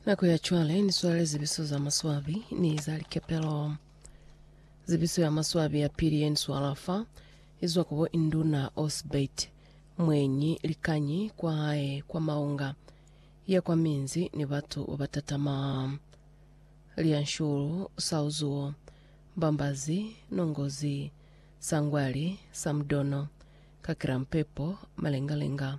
Nako ya cwale ni swala lizebiso za maswabi ni za likepelo. Zebiso ya maswabi ya pili ye ni swala fa izwa kubo Induna Osbert mwenyi likanyi kwa hae kwa Maunga ya kwa minzi ni batu ba batatama. Lianshulu, Sauzuo, Mbambazi, Nongozi, Sangwali, Samdono, Kakirampepo, Malengalenga,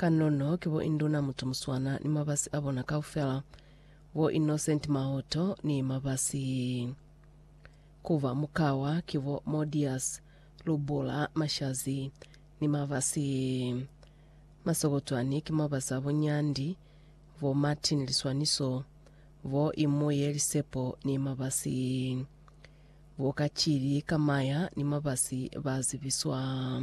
Kanono ki bo Induna Mutumuswana ni mabasi a bona kaufela, bo Innocent Mahoto ni mabasi. Ku ba mukawa ki bo Modias Lubula Mashazi ni mabasi. Masokotwani ki mabasi a bo Nyandi, bo Martin Liswaniso, bo Imuye Lisepo ni mabasi. Bo Kachili Kamaya ni mabasi ba zibiswa.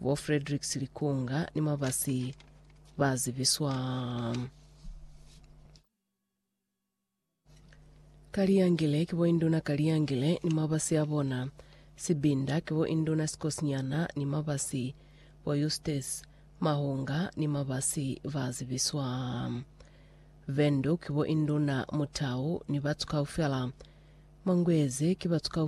bo Frederick Silikunga ni mabasi ba zibiswa Kaliyangile ki bo Induna Kaliyangile ni mabasi a bona, Sibinda ki bo Induna Sikosinyana ni mabasi, bo Eustace Mahunga ni mabasi ba zibiswa Vendu ki bo Induna Mutau ni batu kaufela, Manguezi ki batu kaufela